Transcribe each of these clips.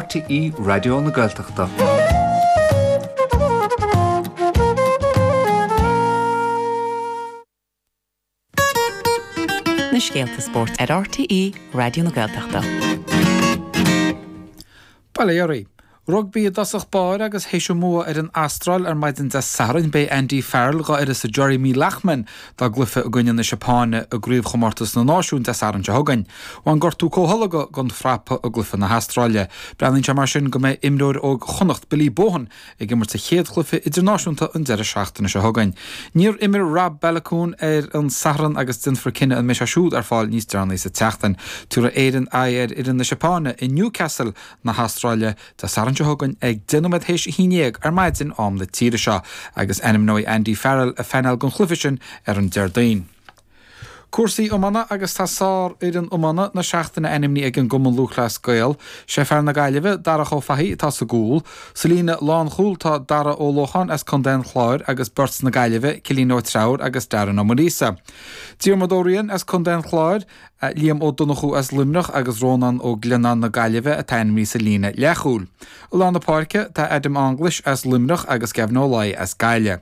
RTÉ Raidió na Gaeltachta. Na scéalta spóirt ar RTÉ Raidió na Gaeltachta. Bail ó Dhia oraibh. Rugbaí i dtosach báire agus théis a mbua ar an Astráil ar maidin Dé Sathairn, beidh Andy Farrell, d'uireasa Jeremy Loughman, dá gcluiche i gcoinne na Seapáine i gCraobhchomórtas na Náisiún Dé Sathairn seo chugainn. Bhain gortú comhtholgtha dhon fhrapa i gcluiche na hAstráile. Breathnaíonn sé mar sin go mbeidh imreoir óg Chonnacht, Billy Bohan, ag imirt a chéad chluiche idirnáisiúnta an deireadh seachtaine seo chugainn. Níor imir Rob Baloucoune ar an Satharn agus déanfar cinneadh an mbeidh sé siúd ar fáil níos deireanaí sa tseachtain. Tiúrfaidh Éire aghaidh ar fhoireann na Seapáine i Newcastle na hAstráile Dé Sathairn seo chugainn ag deich nóiméad théis a haon dhéag ar maidin, am na tíre seo, agus ainmneoidh Andy Farrell a phainéal don chluiche sin ar an Déardaoin. Cúrsaí iomána agus tá sárfhoireann iomána na seachtaine ainmnithe ag an gCumann Lúthchleas Gael. Sé fear na Gaillimhe, Darach Ó Fathaigh, atá sa gcúl. Sa líne lánchúil tá Dara Ó Lócháin as contae an Chláir agus beirt na Gaillimhe, Cillian Ó Treabhair agus Darren Ó Muiríosa. Diarmuid Ó Ríain as contae an Chláir. Liam Ó Donnchú as Luimneach agus Rónán Ó Glionnáin na Gaillimhe atá ainmnithe sa líne leathchúil. I lár na páirce tá Adam English as Luimneach agus Gavin Ó Laoi as Gaillimh.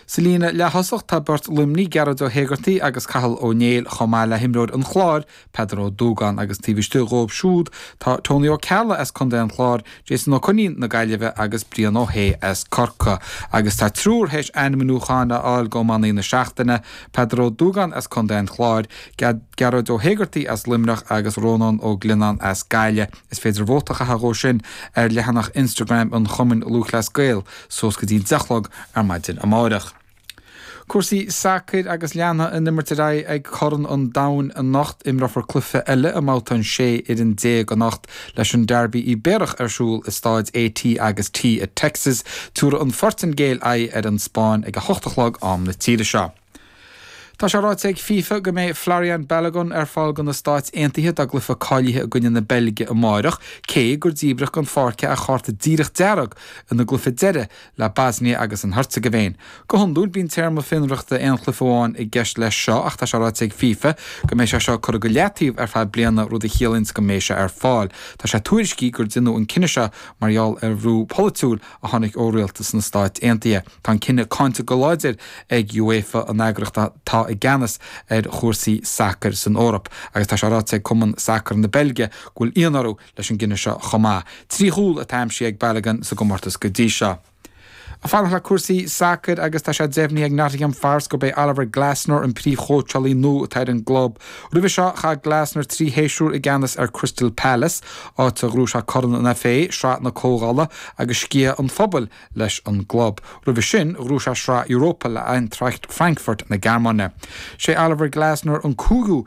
Sa líne leath-thosach tá beirt Luimnigh, Gearóid Ó hÉigeartaigh agus Cathal Ó Néill chomh maith le himreoir an Chláir, Peadar Ó Dúgáin agus taobh istigh dhóibh siúd tá Tony Ó Ceallaigh as Contae an Chláir, Jason Ó Coinín na Gaillimhe agus Brian Ó hAodha as Corcaigh agus tá triúr théis ainmniúchán a fháil dho Iománaí na Seachtaine, Peadar Ó Dúgáin as Contae an Chláir, Gearóid Ó hÉigeartaigh as Luimneach agus Rónán Ó Glionnáin as Gaillimh. Is féidir vóta a chaitheamh dhó sin ar leathanach Instagram an Chumainn Lúthchleas Gael suas go dtí an deich chlog ar maidin amáireach. Cúrsaí sacair agus leanfaidh an imirt ar aghaidh ag Corn an Domhain anocht. Imreofar cluiche eile i mBabhta na sé fhoireann déag anocht leis an Derby Ibéarach ar siúl i staid AT agus T i Texas. Tiúrfaidh an Phortaingéil aghaidh ar an Spáinn ag a hocht a chlog, am na tíre seo. Tá sé ráite ag fifa go mbeidh Folarin Balogun ar fáil dho na Stáit Aontaithe dá gcluiche cáilithe i gcoinne na Beilge amáireach, cé gur díbreadh den pháirc é ar chárta díreach dearg ina gcluiche deiridh leis an mBoisnia agus an Heirteagaivéin. Go hiondúil, bíonn téarma fionraíochta aon chluiche amháin i gceist leis seo ach tá sé ráite ag fifa go mbeidh sé seo curtha go leataobh ar feadh bliana, rud a chiallaíonns go mbeidh sé ar fáil. Tá sé tuairiscithe gur déanadh an cinneadh seo mar gheall ar bhrú polaitiúil a tháinig ó rialtas na Stáit Aontaithe. Tá an cinneadh cáinte go láidir ag UEFA, an eagraíocht atá i gceannas ar chúrsaí sacair san Eoraip, agus tá sé ráite ag Cumann Sacair na Beilge go bhfuil ionadh orthu, leis an gcinneadh seo chomh maith. Trí chúl atá aimsithe ag Balogun sa gcomórtas go dtí seo. Ag fanacht le cúrsaí sacair agus tá sé deimhnithe ag Nottingham Forest gurb é Oliver Glasner an príomhchóitseálaí nua atá ar an gclub. Roimhe seo, chaith Glasner trí shéasúr i gceannas ar Crystal Palace, áit ar ghnóthaigh sé Corn an FA, Sraith na Comhdhála agus Sciath an Phobail leis an gclub. Roimhe sin, ghnóthaigh sé Sraith Europa le Eintracht Frankfurt na Gearmáine. Sé Oliver Glasner an cúigiú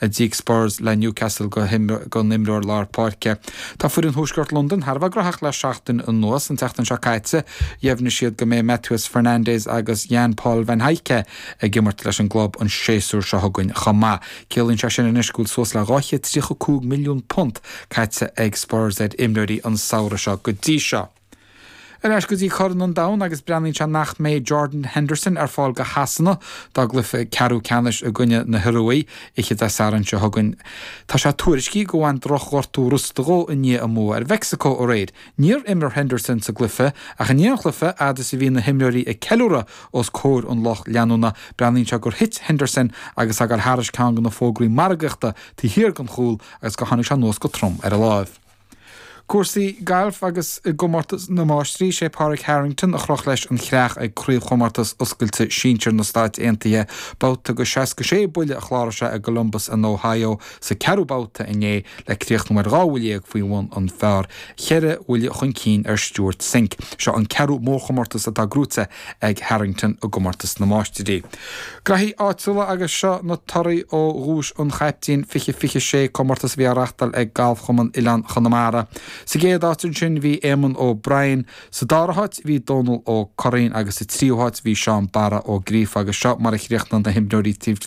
a d'íoc Spurs le Newcastle don imreoir lár páirce. Tá foireann Thuaisceart Londain thar a bheith graitheach le seachtain anuas. An tseachtain seo caite, dheimhnigh siad go mbeidh Mateus Fernandes agus Jan Paul van Hecke ag imirt leis an gclub an séasúr seo chugainn chomh maith. Ciallaíonn sé sin anois go bhfuil suas le £235 milliún caite ag Spurs ar imreoirí an samhradh seo go dtí seo. Ar ais go dtí Corn an Domhain agus breathnaíonn sé nach mbeidh Jordan Henderson ar fáil do Shasana dá gcluiche ceathrú ceannais i gcoinne na hIoruaidh oíche Dé Sathairn seo chugainn. Tá sé tuairiscithe gur bhain drochghortú rosta dhó i ndiaidh a mbua ar Mheicsiceo aréir. Níor imir Henderson sa gcluiche ach i ndiaidh an chluiche fhad is a bhí na himreoirí ag ceiliúradh os comhair an lucht leanúna, breathnaíonn sé gur thit Henderson agus é ag gabháil thairis ceann de na fógraí margaíochta taobh thiar den chúl agus gur tháinig sé anuas go trom ar a láimh. Cúrsaí gailf agus i gcomórtas na máistrí, sé Pádraig Harrington a chroch leis an chreach ag Craobhchomórtas Oscailte Sinsear na Stáit Aontaithe. Babhta de 66 buille a chláraigh sé i gColumbus in Ohio sa 4ú babhta inné le críochnú ar 12 bhuille faoi bhun an phar, 4 bhuille chun cinn ar Stewart Cink. Seo an 4ú mórchomórtas atá gnóthaithe ag Harrington i gComórtas na Máistrí. Graithí Áitiúla agus seo na torthaí ó Dhuais an Chaiptín, Fiche Fiche Sé comórtas a bhí á reachtáil ag Galfchumann Oileán Chonamara. Sa gcéad áit ansin bhí Éamonn Ó Briain, sa dara háit bhí Dónal Ó Curraoin agus sa tríú háit bhí Seán Barra Ó Gríofa agus seo mar a chríochnaigh na himreoirí taobh